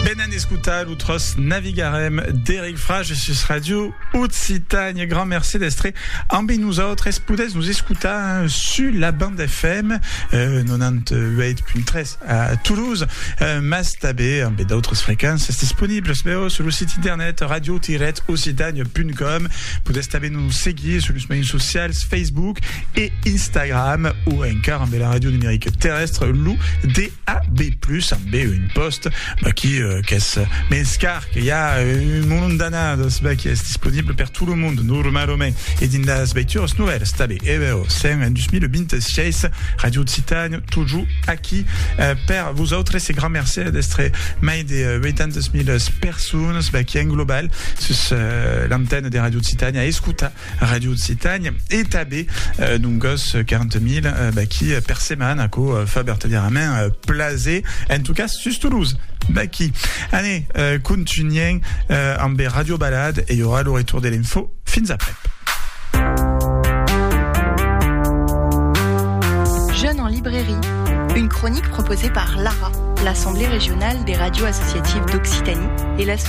Venen escotar lo tròç Navigarem d'Eric Frages sus Ràdio Occitània. Grand merci d'estre ambi nosautres. Podètz nos escotar sus la band FM 98.3 a Toulouse, mas tanben ambe d'autres frequences disponibles vèus sus lo sit internet radio-occitània.com. Podètz tanben nos seguir sus los mejans socials Facebook e Instagram o encara ambe la ràdio numerica terrèstre, lo D. A be plus a be un post qui qu'es mens car que i a un molon d'annadas be qui es disponible per tot lo monde normalament e dins las veituras novèlas tanben e be o sen en 2026 Radio Occitània tojo aquí per vosautres e grand mercè d'estre mai de 800.000 personas be qui en global sus l'antena de Radio Occitània a escotar Radio Occitània e tanben d'un gòs 40.000 d'aquí per setmana que fa vertadièrament plaser, en tot cas sus Toulouse. D'aquí. Anè, contunhèm amb Radio Balade e i aurà lo retour de l'info. Fins après. Une chronique proposée par l'ARA, l'Assemblée régionale des radios associatives d'Occitanie, et la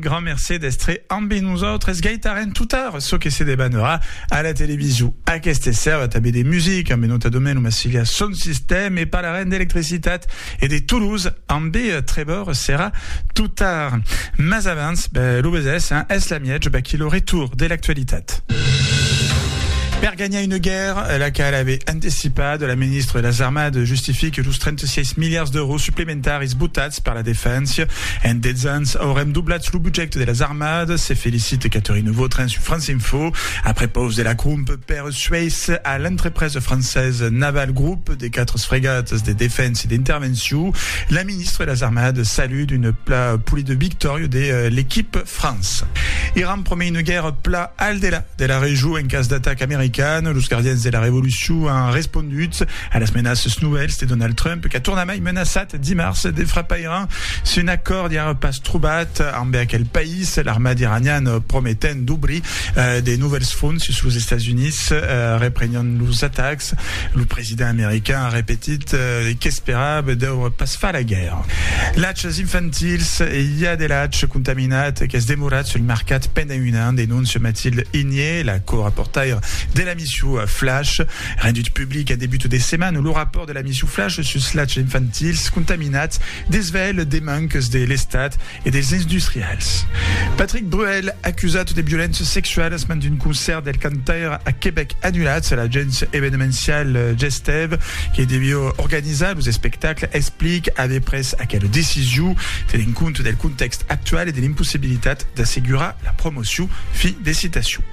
Grand mercé d'estre ambe nosautres. Gaitarem totar çò que se debanera a la televisou. Aqueste sèrva tanbe de music ambe nota Domèneu Massiliá son sistèm e parlarem d'electricitat e de Toulouse ambe Trevor Serra totar. Mas abans, ben, lo besés, hein, es la miètge, vaquí lo retour de l'actualitat. Per ganhar una guèrra, la qual ave antecipat, la ministra de las Armades justifique los 36 miliards d'èuros supplementaris Tard esbotats per la defensa, en 10 ans aurem doblats lo budget de las armadas, se felicite Catherine Vautrin sus France Info, après paus de la cromp per sueis a l'entrepresa francesa Naval Group de 4 fregatas de defensa e d'intervencion, la ministra de las armadas salut d'una pla polida victòria de l'equipe France. Iran promei una guèrra pla al delà de la region en cas d'ataca americana, los gardians de la revolucion an respondut a las menaças novèls de Donald Trump qu'a tornament I menaçat dimars de frapar Iran si un acòrd i ara pas trobat ambe aquel país, l'armat iranian prometent d'obrir de novèls fronts sus los Estats Units reprenhon los atacs. Lo president american a repetit qu'esperava deure pas far la guèrra. Lachs infantils, i a de lach contaminat qu'es demorat sul mercat pendent un an, denóncia Mathilde Igné, la co-raportaira de l'emission Flash, rendut public en debut de setmana lo rapòrt de la L'ami suflache sus lachs infantils contaminats desvèl de manques de l'Estat e dels industrials. Patrick Bruel acusat de violéncias sexualas mand un concèrt del cantaire a Quebec annulat a l'agents evenemencial Gestève que deviá organizar los espectacles explic aver pres aquela decision tenent compte del contèxt actual e de l'impossibilitat d'assegurar la promocion. Fin de citacion.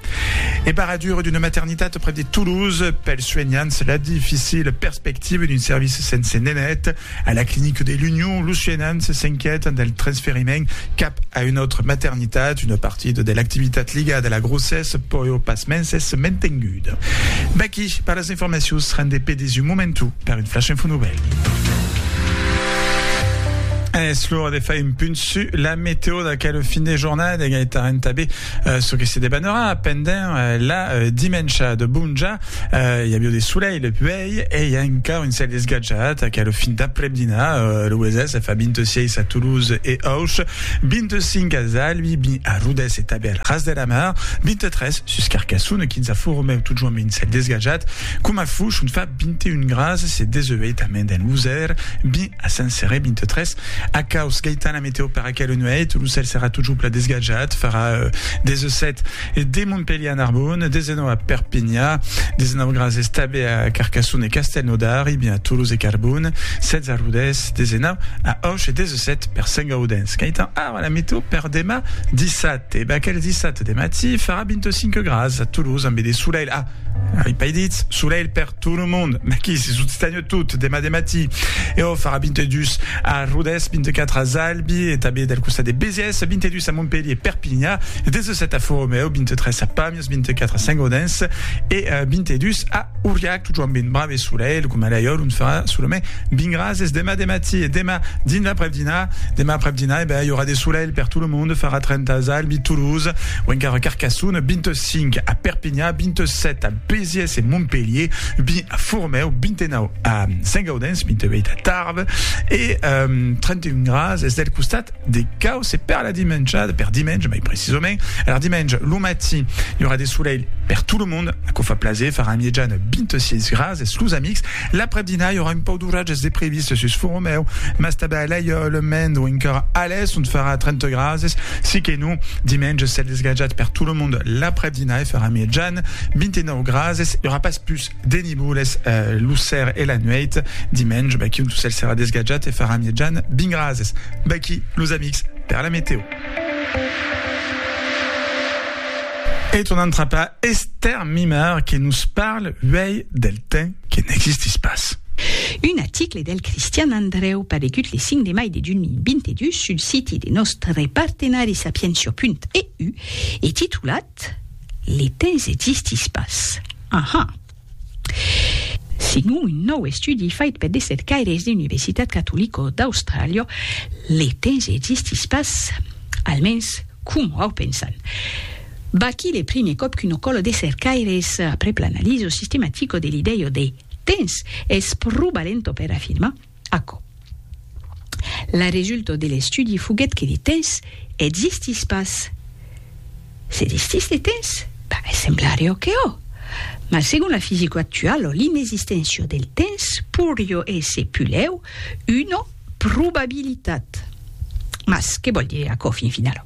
E barradura d'una maternitat prèp de Toulouse, pels suenhants, la dificila perspectiva d'un servici sense nenet. A la clinica de l'Union, los suenhants s'inquiètan del transferiment cap a una autra maternitat. Una partida de l'activitat ligada a la grossessa pòu pasmens èsser mantenguda. Vaqui per las informacions, rendé per dins un momentu per un flash info novèl. Es l'ora de far un punt sus la meteo d'aquel fin de jornada, Gaëtan Tabé. Çò que se debanarà pendent la dimensha de Bonja, i avió de solelh le puèi e i a encara un cèl esgatjat qu'a lo fin d'aprèp-dinar. Lo Wezès fa 26 a Toulouse e Auch, 25 a Zalbi, 20 a Rodés e tanben al Ras de la Mar, 23 sus Carcassona, 15 a Font-Romèu, totjorn un cèl desgatjat coma Fouch ont fa 21 grases e 18 a Mendèn-Losèr, 20 a Saint-Céré, 23 a Caus. Gaitana, meteo per Aquela nuèit, lo cèl serà totjupla desgatjat, farà des 7 de Montpelhier a Narbonne, 19 a Perpinha, 19 graus estabe a Carcassonne e Castelnaudari, bien a Toulouse e Carbon, 16 a Rodés, 19 a Auch e 17 per Sengaudenç. Qu'aitan ara la meteo per demà dissabte? Bah, aquel dissabte de matí farà 25 graus a Toulouse ambe de solelh, ah, ai pas dit solelh per tot lo monde, maquí se sot stanhut. Tot, demà de matí, e o farà 22 a Rodés, 24 a Zalbi e tanben del costat de Besièrs, 22 a Montpelhier, Perpinha, 17 a Foromeu, 23 a Pàmies, 24 a Saint-Gaudens e 22 a Auriac. Totjorn ben brave e solelh, coma laiòr, ont farà solament 20 grases demà de matí e demà dins l'aprèp-dinar. Demà aprèp-dinar, e ben, i aurà de solelh per tot lo monde, farà 30 a Zalbi, Toulouse o encara Carcassonne, 25 a Perpinha, 27 a. Pesièrs e Montpelhier, vint a Fourmèu, 29 a Saint-Gaudens, 28 a Tarbes e 31 grads es del costat de Causse. E per la dimensha, per dimenge mai precisament, alar dimenge lo matí i aurà de solelh per tot lo mond, aquò fa plaser, farà en miejana 26 grads es los amics. L'après-dinà i aurà un pauc d'oratges de previst sus Fourmèu, mas tanben a Laiòle, Mende o encara Alès ont farà 30 grads es. Siquenons, dimenge cèl desgatjat per tot lo mond l'après-dinà e farà miejana. 29 grases, i aurà pas pus de nivoles lo ser e la nuèit. Dimenge, vaquí un tosèl serà desgatjat e farà mièjan 20 grases. Vaquí, los amics, per la meteo. E tornam trapar Esther Mimard que nos parle uèi del temps que n'existís pas. Un aticle del Cristian Andrèu paregut le 5 de mai de 2022 sul siti de nòstre partenari Sapientia.eu e titulat, Les temps existis pas. Aha! Segon un nòu estudi fait per de cercaires d'Universitat Catolico d'Austràlia, les temps existis pas, almens coma au pensan. Vaquí le primier còp qu'una còla de cercaires, après l'analiso sistematico de l'idèia de temps, es pro balenta per afirmar, Aquò. La resulta de l'estudi foguèt que de temps existís pas. Se distís de temps? Ben, semblarió que ò. Mas segon la fisica actuala, l'inexisténcia del temps pourrió èsser pulèu una probabilitat. Mas que vòl dire aquò fin finala?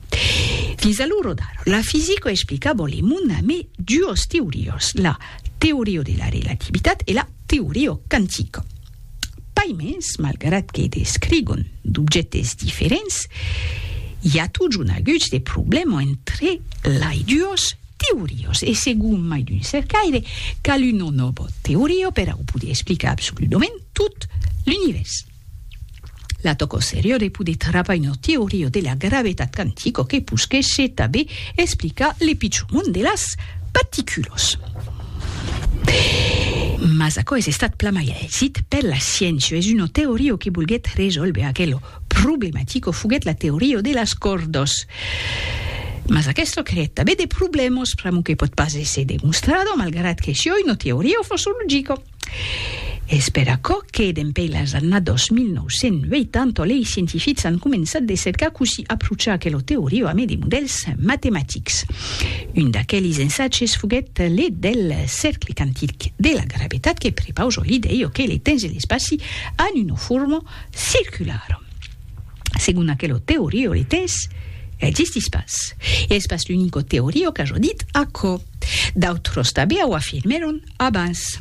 Fins a l'ora d'ara, la fisica explicava le mond amé duas teorias, la teoria de la relativitat e la teoria quantica. Pas mens, malgrat que descrigon d'objèctes diferents, i a totjorn aguts de problèmas entre lai duos teorios e segon mai d'un cercaire, cal una nòva teoria per au poder explicar absoludament tot l'Univèrs. La tòco serior e poder travar una teoria de la gravetat quantico que posquèshe tabé explicar le pichon mond de las particulos. Mas aquò es estat plan mai aisit per la sciéncia, es una teoria que volguèt resòlver aquela problematico foguèt la teoria de las còrdas. Mas aquesta creèt tabé de problèmas, pr'amor que pòt pas èsser demostrada, malgrat que siá una teoria fosologica. Es per aquò que, dempè las annadas 1980, lei scientifics an començat de cercar cossí aprochar aquela teoria amé de modèls matematics. Un d'aqueles ensatges foguèt le del cercle quantic de la gravetat que prepausa l'idèia que le temps e l'espaci an una forma circulara. Segon aquela teoria le temps existís pas. E es pas l'unica teoria qu'aja dit aquò. D'autras tanbè au afirmèron. Abans.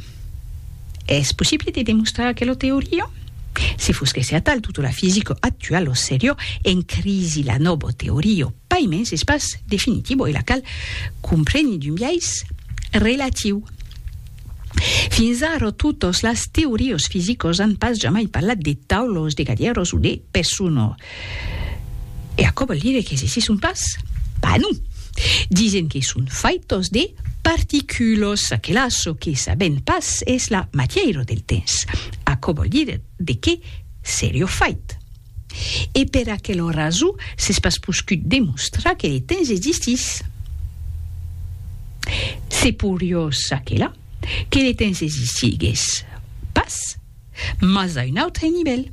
Es possible de demostrar aquela teoria? Se fos que se atal tota la fisica actuala o seriá en crisi la nòva teoria, pas mens es pas definitivo e la cal comprene d'un biais relatiu. Fins ara totas las teorias fisicas an pas jamai parlat de taulas, de gadièras o de personas. E aquò vòl dire que se se son pas? Pas non! Disen que son faitos de particulos, aquela çò que sabèm pas es la matièira del temps. Aquò vòl dire de qué serió fait. E per aquela raso s'es pas poscut demostrar que le temps existís. Se porió çaquelà que le temps existigues pas. Mas a un autre nivèl.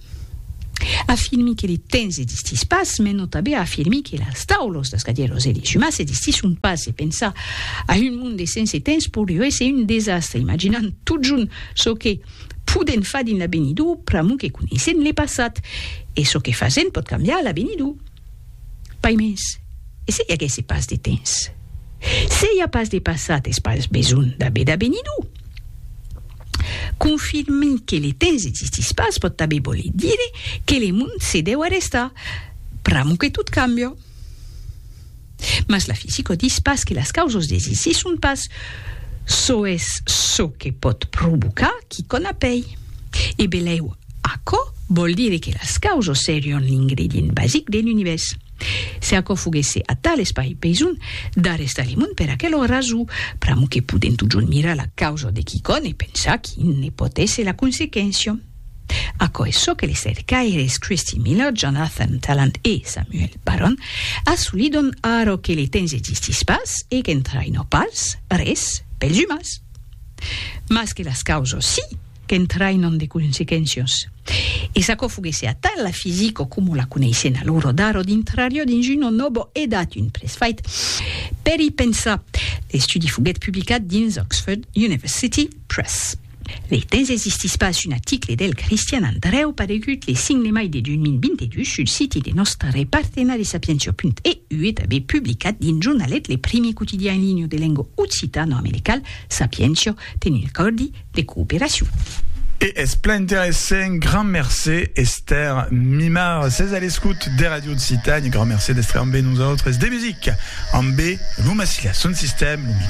Afirmi que le temps existís pas me nòta be a afirmir que las taulos, las cadièlos e les umans existisson pas e pensar a un monde sense temps poriu èsser un desastre imaginant totjorn çò que podèm far dins l'avenidor pr'amor que coneissèm le passat e çò que fasèm pòt cambiar l'avenidor. Pas mens. E se i aguèsse pas de temps? Se i a pas de passat es pas besonh d'aver d'avenidor. Confirmi que le temps existís pas pòt tanben voler dire que le mond se deu arrestar pr'amo que tot cambia. Mas la fisica dis pas que las causas desisisson pas, çò es çò que pòt provocar quicòna pei. E belèu, aquò vòl dire que las causas serián l'ingredient basic de l'univèrs. Se aquò foguèsse atal es pas besonh d'arrestar li mond per aquel ò raso, pr'amor que podem totjorn mirar la causa de quicòm e pensar quin ne pòt èsser la consequéncia. Aquò es çò que les cercaires Christy Miller, Jonathan Tallant e Samuel Barron assolidon ara que le temps existís pas e qu'entraïnò pas res pels umans. Mas que las causas sí! qu'entraïnon de consequéncias. E s'aquò foguèsse atal, la fisica coma la coneissèn alora d'ara dintrariá dins una nòva edat, un presfait per i pensar. L'estudi foguèt publicat dins Oxford University Press. Lei temps existís pas un aticle del Cristian Andrèu paregut le 5 de mai de 2022 sul siti de nòstre partenari Sapientia.eu e tanben publicat dins Jornalet, le primi quotidian en linha de lenga occitano-americal, Sapientia, tenent còrdi de cooperacion. E es plan interessent, grand mercé Esther Mimard. Ses a l'escout de Radio Occitània, grand mercé d'estre ambe nosautres. De musica ambe Lou Massilia, son sistèm, lo micro.